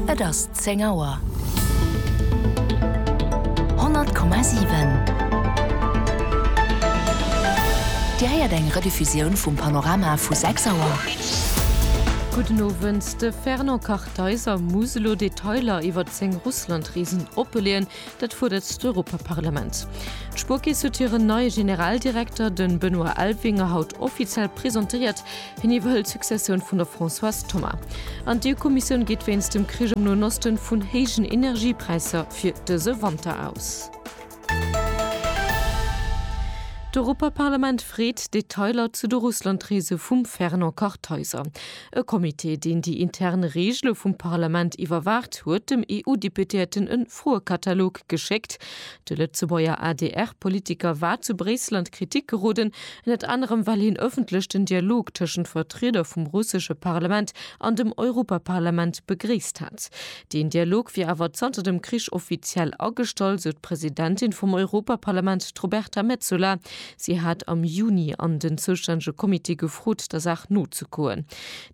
Et ass zéng Auer. 100,7 Dir héiert eng Rediffusioun vum Panorama vu 6 Auer. Gudden Owend, De Fernand Kartheiser muss elo Detailer iwwert seng Russlandreesen oppeleeën. Dat fuerdert d'Europaparlament. D'Spuerkeess huet hiren neie Generaldirekter, de Benoît Elvinger, haut offiziell presentéiert. Hien iwwerhëlt d'Successioun vun der Françoise Thomas. An d'EU-Kommissioun geet wéinst dem Krich am Noen Osten vun héijen Energiepräisser fir dëse Wanter aus. D'Europaparlament freet Detailer zu de Russlandreese vum Fernand Kartheiser. E Comité, deen déi intern Regele vum Parlament iwwerwaacht, huet dem EU-Deputéierten e Froekatalog geschéckt. De Lëtzebuerger ADR-Politiker war zu Bréissel an d'Kritik geroden, ënnert anerem well hien ëffentlech den Dialog tëschent Vertrieder vum russesche Parlament an dem Europaparlament begréisst hat. Deen Dialog wier awer zanter dem Krich offiziell agestall, sou d'Presidentin vum Europaparlament, d'Roberta Metsola. Si hat am Juni an den zoustännege Comité gefrot, der Saach nozegoen.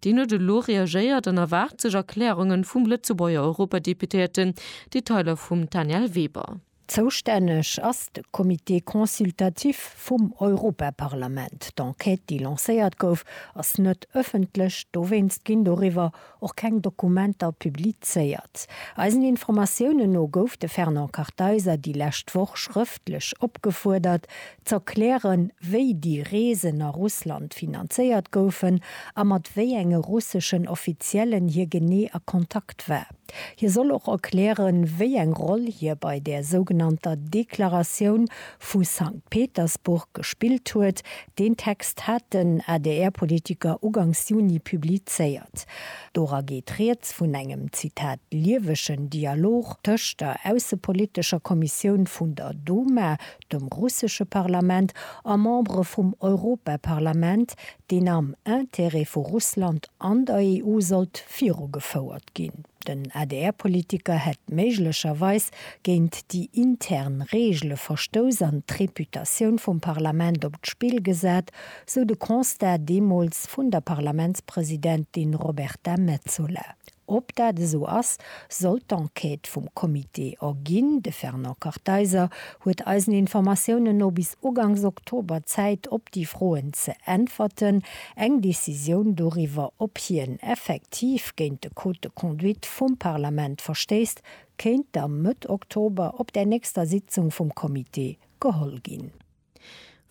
Deen huet elo reagéiert an erwaart sech Erklärungen vum Lëtzebuerger Europadeputéierten. Detailer vum Danièle Weber. Zoustänneg ass de Comité consultatif vum Europaparlament. D'Enquête, déi lancéiert gouf, ass net ëffentlech. Dowéinst ginn doriwwer och keng Dokumenter publizéiert. Eisen Informatiounen no gouf de Fernand Kartheiser déi lescht Woch schrëftlech opgefuerdert, z'erklären, wéi déi Reesen a Russland finanzéiert goufen a mat wéi enge russeschen Offiziellen hie genee a Kontakt war. Hie soll och erklären, wéi eng Roll hie bei där sougenannter Deklaratioun vu Sankt Petersburg gespillt huet. Deen Text hat den ADR-Politiker ugangs Juni publizéiert. Dora geet rieds vun engem, Zitat, liewegen Dialog tëscht der aussepolitescher Kommissioun vun der Duma, dem russesche Parlament, a Membere vum Europaparlament, deen am Intérêt vu Russland an der EU sollt virugefouert ginn. Den ADR-Politiker hätt méiglecherweis géint déi intern Reegele verstouss an d'Reputatioun vum Parlament op d'Spill gesat, sou de Constat deemools vun der Parlamentspresidentin Roberta Metsola. Ob dat esou ass, sollt d'Enquête vum Comité erginn. De Fernand Kartheiser huet eisen Informatiounen no bis ugangs Oktober Zäit op déi Froen ze äntwerten. Eng Decisioun doriwwer, ob hien effektiv géint de Code de conduite vum Parlament verstéisst, kéint da Mëtt Oktober op där nächster Sitzung vum Comité geholl ginn.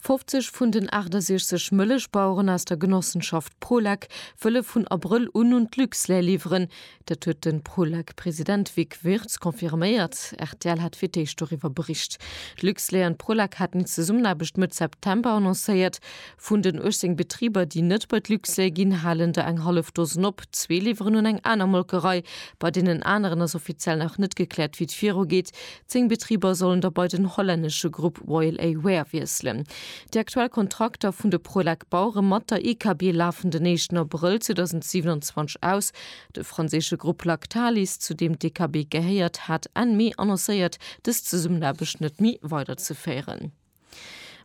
50 vun den 68 Mëllechbaueren aus der Genossenschaft Prolek wëlle vun Abrëll un un d'Luxlait liwweren. Dat huet de Prolek-President Vic Wirtz confirméiert. Rtl hat fir d'éischt doriwwer bericht. D'Luxlait an d'Prolek haten eng Zesummenaarbecht Mëtt September annoncéiert. Vun den 18 Betriber, déi net bei d'Luxlait ginn, halen der eng hallef Dosen op. Zwee liwweren un eng aner Molkerei. Bei deenen aneren ass offiziell nach net gekläert, wéi et virugeet. Zéng Betriber sollen da bei den hollännesche Grupp Royal A Ware wiesselen. Déi aktuell Kontrakter vun de Prolec Bauere mat der IKB lafen den éischten Abrëll 2027 aus. De franséische Grupp Lactalis, zu deem d'IKB gehéiert, hat Enn Mee annoncéiert, dës Zesummenaarbecht net méi weiderzeféieren.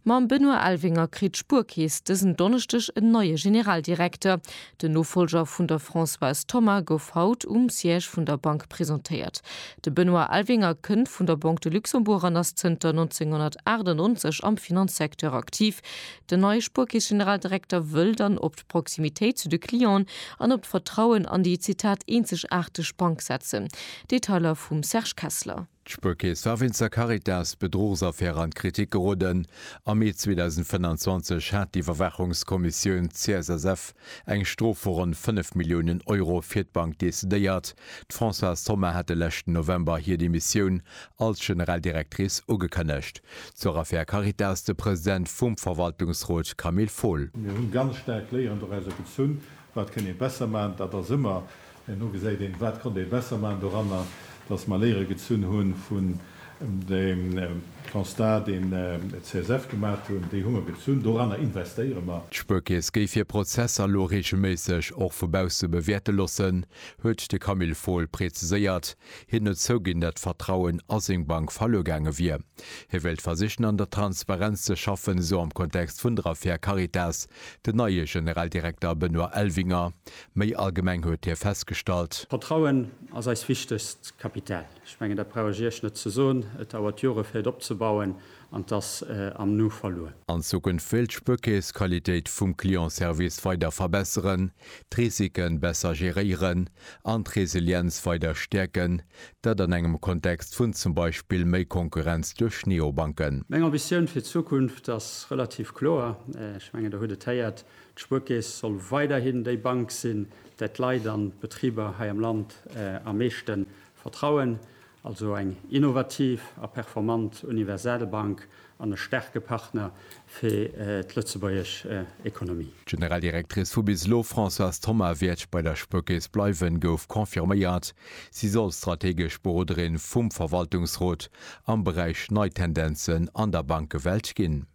Mam Benoît Elvinger kritt d'Spuerkeess dësen Donneschdeg en neie Generaldirekter. Den Nofollger vun der Françoise Thoma gouf haut um Siège vun der Bank presentéiert. De Benoît Elvinger kënnt vun der Banque de Luxembourg an ass zënter 1998 am Finanzsecteur aktiv. Den neie Spuerkeess-Generaldirekter wëll dann op d'Proximitéit zu de Clienten an op d'Vertrauen an déi, Zitat, eenzegaarteg Bank setzen. Detailer vum Serge Kessler. D'Spuerkeess war wéinst der Caritas-Bedruchsaffär an d'Kritik geroden. Am Mee 2025 hat d'Iwwerwaachungskommissioun CSSF eng Strof vu ronn 5 Milliounen Euro fir d'Bank decidéiert. D'Françoise Thoma hat de leschten November hir Demissioun als General Directrice ugekënnegt. Zur Affär Caritas de President vum Verwaltungsrot Camille Fohl. Mir hunn ganz staark léierend och aus der Gezunn, wat kënn ee besser maachen. Dat ass ëmmer Herno geséit een, wat konnt ee besser maachen doranner, datt mer Léiere gezunn hu vun deem Constat, deen d'CSF gemaacht hunn. Déi hu mer gezunn, doranner investéiere mer. D'Spuerkeess géif hir Prozesser lo reegelméisseg och vu bausse bewäerte lossen, huet de Camille Fohl preziséiert. Hien huet zouginn, datt d'Vertrauen a seng Bank verluer gaange wier. Hie wéilt versichen, an der Transparenz ze schaffen, esou am Kontext vun der Affär Caritas den neie Generaldirekter Benoît Elvinger. Méi allgemeng huet hie festgestallt. Vertrauen ass eist wichtegst Kapital. Ech mengen, dat brauch ech Iech net ze soen. Et dauert Jore fir et opzebauen an et ass am Nu verluer. An Zukunft wéilt d'Spuerkeess d'Qualitéit vum Clientservice weider verbesseren, d'Risike besser geréieren an d'Resilienz weider stäerken, dat an engem Kontext vun zum Beispill méi Konkurrenz duerch Neobanken. Meng Ambitioun fir d'Zukunft ass relativ kloer. Ech mengen, Der hutt et héiert, D'Spuerkeess soll weiderhin déi Bank sinn, där d'Leit an d'Betriber hei am Land am meeschte vertrauen. Also eng innovativ a performant universal Bank an e staarke Partner fir d'lëtzebuergesch Ekonomie. D'Generaldirectrice vu bis elo, Françoise Thoma, wäert bei der Spuerkeess bleiwen, gouf confirméiert. Si soll strategesch Beroderin vum Verwaltungsrot am Beräich nei Tendenzen an der Bankewelt ginn.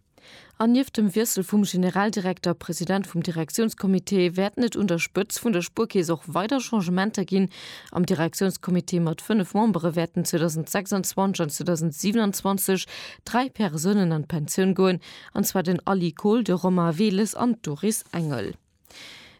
An nieft dem Wiessel vum Generaldirekter, President vum Direktiounscomité, wäerten et un der Spëtz vun der Spuerkeess och weider Changementer ginn. Am Direktiounscomité mat 5 Membere wäerten 2026 an 2027 dräi Persounen an d'Pensioun goen, an zwar den Ali Kohl, de Romain Weles an d'Doris Engel.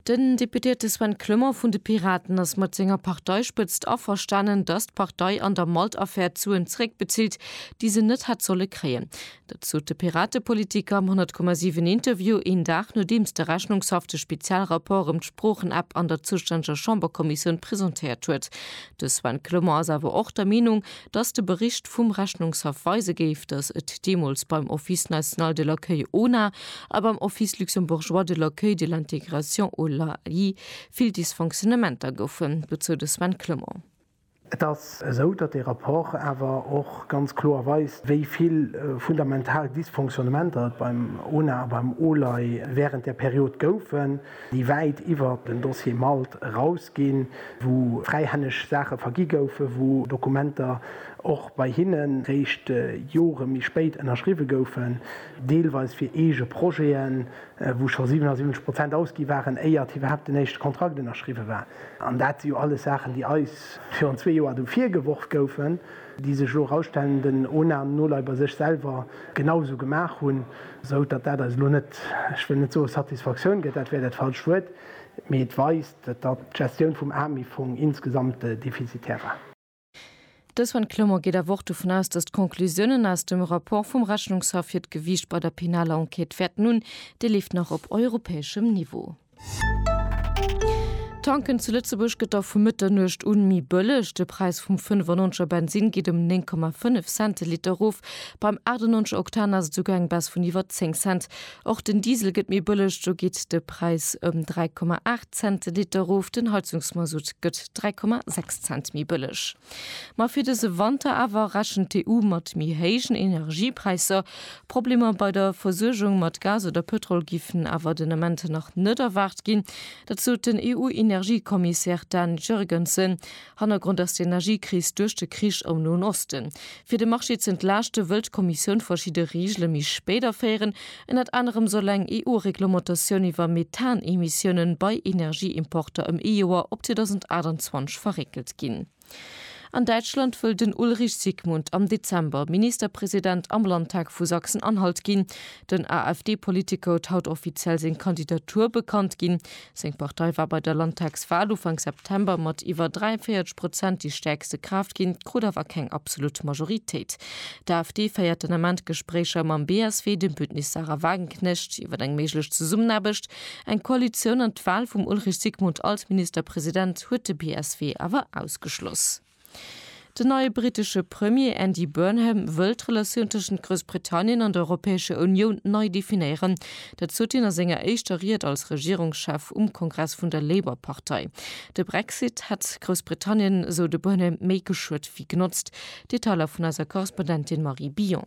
Den Deputéierte Sven Clement vun de Piraten ass mat senger Parteispëtzt averstanen, datt d'Partei an der Malt-Affär d'Suen zeréckbezilt, déi se net hätt solle kréien. Dat sot de Piratepolitiker am 100 Komma 7 Interview, een Dag nodeems de Rechnungshaff de Spezialrapport ëm d'Sproochen-App an der zoustänneger Chamberkommissioun presentéiert huet. De Sven Clement ass awer och der Meenung, dass de Bericht vum Rechnungshaff weise géif, dass et deemools beim Office national de l'accueil, ONA, a beim Office luxembourgeois de l'accueil de l'intégration, OLAI, vill Dysfonctionnementer goufen, dozou de Sven Clement. Et ass esou, datt dee Rapport awer och ganz kloer weist, wéi vill fundamental Dysfonctionnementer et beim ONA a beim OLAI wärend där Period goufen. déi wäit iwwert den Dossier Malt eraus ginn, wou fräihänneg Saache vergi goufen, wou Dokumenter och bei hinne réischt Jore méi spéit ënnerschriwwe goufen, deelweis fir eege Projeten, wou scho 77 Prozent ausgi waren, éiert iwwerhaapt den éischte Kontrakt ënnerschriwwe war. An dat si jo alles Saachen, déi eis virun zwee Joer do virgeworf goufen, déi sech elo erausstellen, den ONA no lei bei sech selwer genau esou gemaach hunn. Esou datt dat eis elo net, ech wëll net soe Satisfaktioun gëtt, dat wär dat falscht Wuert, mee et weist, datt d'Gestioun vum AMIF-Fong insgesamt defizitär war. De Sven Clement geet awer och dovun aus, datt d'Conclusiounen aus dem Rapport vum Rechnungshaff hiert Gewiicht bei der penaler Enquête wäerten hunn. Dee leeft nach op europäeschem Niveau. Tanken zu Lëtzebuerg gëtt da vu Mëtternuecht un méi bëlleg. De Präis vum 95 er Bensinn geet ëm 9,5 Cent de Liter erof. Beim 98 er Oktan ass et esouguer eng Baisse vun iwwer 10 Cent. Och den Diesel gëtt méi bëlleg, do geet de Präis ëm 3,8 Cent de Liter erof. Den Heizungsmasutt gëtt 3,6 Cent méi bëlleg. Ma fir dëse Wanter awer rechent d'EU mat méi héijen Energiepräisser. Problemer bei der Versuergung mat Gas oder Pëtrol giffen awer den Ament nach net erwaart ginn. Dat sot den EU-Energiekommissär Dan Jurgensen. Hannergrond ass d'Energiekris duerch de Krich am Noen Osten. Fir de Marché z'entlaaschte wëll d'Kommissioun verschidde Reegele méi spéit aféieren, Ënnert anerem soll eng EU-Reglementatioun iwwer Methan-Emissioune bei Energieimporter ëm ee Joer op 2028 verréckelt ginn. An Däitschland wëll den Ulrich Sigmund am Dezember Ministerpresident am Landtag vu Sachsen-Anhalt ginn. Den AfD-Politiker huet haut offiziell seng Kandidatur bekannt ginn. Seng Partei war bei der Landtagswal Ufank September mat iwwer 43 Prozent déi stäerkste Kraaft ginn, krut awer keng absolut Majoritéit. D'AfD féiert den Ament Gespréicher mam BSW, dem Bündnis Sarah Wagenknecht, iwwer eng méiglech Zesummenaarbecht. Eng Koalitioun an d'Wal vum Ulrich Sigmund als Ministerpresident huet de BSW awer ausgeschloss. Den neie brittesche Premier Andy Burnham wëll d'Relatioun tëschent Groussbritannien an der Europäescher Unioun nei definéieren. Dat sot hien a senger éischter Ried als Regierungschef um Kongress vun der Labour-Partei. De Brexit hätt Groussbritannien, esou de Burnham, méi geschuet wéi genotzt. Detailer vun eiser Korrespondentin Marie Billon.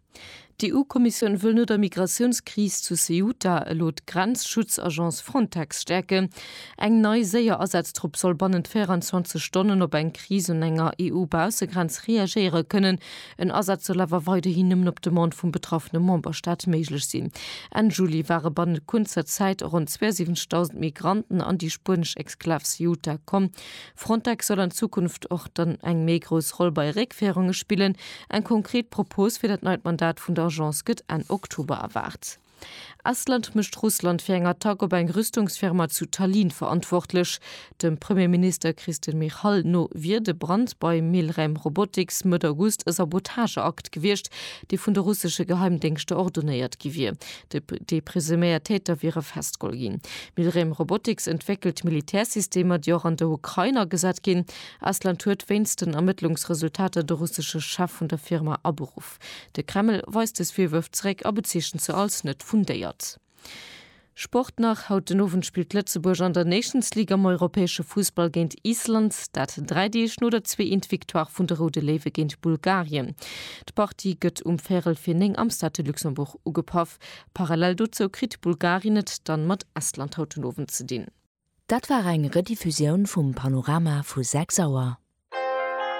D'EU-Kommissioun wëll no der Migratiounskris zu Ceuta elo d'Grenzschutzagence Frontex stäerken. Eng nei séier Asatztrupp soll bannent 24 Stonnen op eng Kris un enger EU-Baussegrenz reagéiere kënnen. En Asaz soll awer weiderhin nëmmen op Demande vum betraffene Memberstaat méiglech sinn. Enn Juli ware bannent kuerzer Zäit ronn 72.000 Migranten an déi spuenesch Exklav Ceuta komm. Frontex soll an Zukunft och dann eng méi grouss Roll bei Réckféierunge spillen. Eng konkret Propos fir dat neit Mandat vun der Agence gëtt Enn Oktober erwaart. Estland mécht Russland fir eng Attack op eng Rüstungsfirma zu Tallinn verantwortlech. Dem Premierminister Kristen Michal no wier de Brand bei Milrem Robotics Mëtt August e Sabotageakt gewiescht, dee vun de russesche Geheimdéngschter ordonéiert gi wier. Déi presuméiert Täter wiere festgeholl ginn. Milrem Robotics entwéckelt Militärsystemer, déi och an der Ukrain agesat ginn. Estland huet wéinst den Ermëttlungsresultater de russesche Chef vun der Firma aberuff. De Kreml weist dës Virwërf zeréck a bezeechent se als net fundéiert. Sport nach, Haut den Owend spillt Lëtzebuerg an der Nations League am europäesche Fussball géint Island. Dat dräi Deeg no der zwee Eent Victoire vun de Roude Léiwe géint Bulgarien. D'Partie gëtt um véierel fir néng am Stade de Luxembourg ugepaff. Parallel dozou kritt Bulgarien et dann mat Estland haut den Owend ze dinn. Dat war eng Rediffusioun vum Panorama vu 6 Auer.